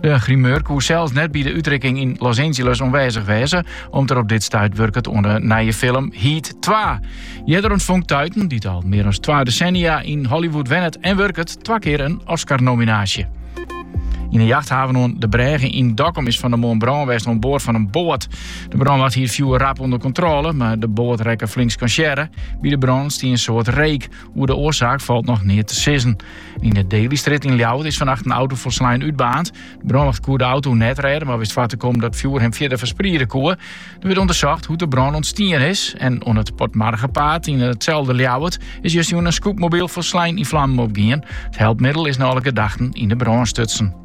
De grimeur koe sels net by de útrikking yn Los Angeles oanwêzich wêze, om't er op dit stuit wurket oan de nije film Heat twa. Earder ûntfong Tuiten, dy't al mear as twa desennia yn Hollywood wennet en wurket, twa kear in Oscar-nominaasje. Yn de jachthaven oan de brêge yn Dokkum is fannemoarn brân west oan board fan in boat. De brânwacht hie it fjoer rap ûnder kontrôle, mar de boat rekke flink skansearre. By de brân stie in soad reek. Oer de oarsaak falt noch neat te sizzen. Yn de Delystrjit yn Ljouwert is fannacht in auto folslein útbaarnd. De brânwacht koe de auto net rêde, mar wist foar te kommen dat it fjoer him fierder ferspriede koe. Der wurdt ûndersocht hoe't de brân ûntstien is. En oan it Potmargepaad yn itselde Ljouwert is justjûn in scootmobyl folslein yn flammen opgien. It helpmiddel is nei alle gedachten yn de brân stutsen.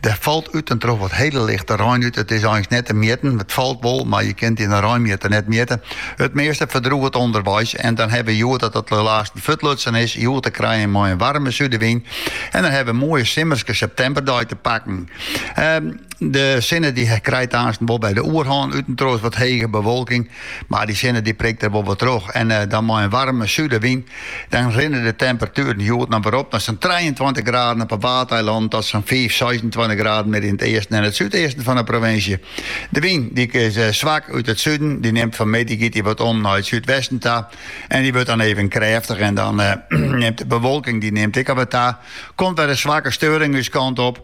Der falt út en troch wat hele lichte rein út. It is eins net te mjitten. It falt wol, mar je kinne it yn in reinmjitter net mjitte. It measte ferdroget ûnderweis en dan hawwe we hjoed dat it lêste fuortlutsen is, hjoed te krijen mei in waarme súdewyn. En dan hawwe we in moaie simmerske septemberdei te pakken. De sinne die krijt aansten wol de oerhân, út en troch wat hege bewolking. Mar dy sinne dy prikt der wol wat troch en dan mei in waarme súdewyn, dan rinne de temperatueren hjoed alwer op nei sa'n trijeentweintich graden op 'e Waadeilannen ta sa'n fiif, seisentweintich graden mear yn it easten en it súdeasten fan 'e provinsje. De wyn dy is swak út it suden, dy nimt fan 'e middei giet dy wat om nei it súdwesten ta en dy wurdt dan even krêftich en dan nimt de bewolking dy nimt ek al wat ta, komt wer in swakke steuring ús kant op.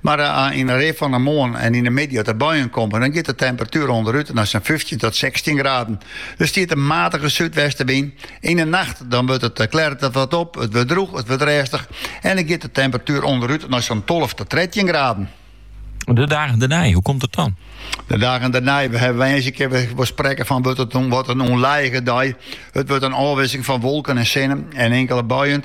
Mar yn de rin fan de moarn en yn de middei as de buien komme, dan giet de temperatuer ûnderút nei sa'n fyftjin tot sechstjin graden. Der stiet in matige súdwestenwyn. Yn de nacht dan wurdt it klêret it wat op, it wurdt drûch, it wurdt rêstich en dan giet de temperatuer ûnderút nei sa'n tolve tot trettjin graden. De dagen dernei, hoe komt it dan? De dagen dernei, woansdei kinne we sprekke fan wurdt it in, wat in ûnlijige dei. It wurdt in ôfwikseling fan wolken en sinne en inkele buien.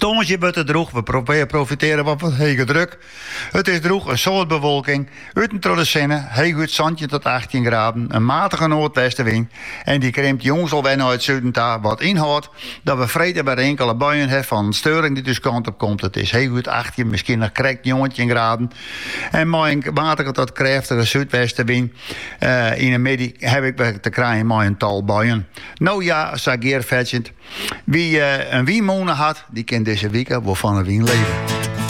Tongersdei wurdt it drûch, we profitearje wat fan hege druk. It is drûch, in soad bewolking, út en troch de sinne, heechút santjin tot achttjin graden, in matige noardwestewyn en dy krimt jûns al wer nei it suden ta, wat ynhâldt dat we freed wer inkele buien ha fan steuring dy't ús kant op komt. It is heechút achttjin, miskien noch krekt njoggentjin graden en mei in matige tot krêftige súdwestewyn. Yn 'e middei ha we ek wer te krijen mei in tal buien. No ja, sa gearfetsjend. Wie in wynmûne hat, dy kin dizze wike wol fan 'e wyn leve.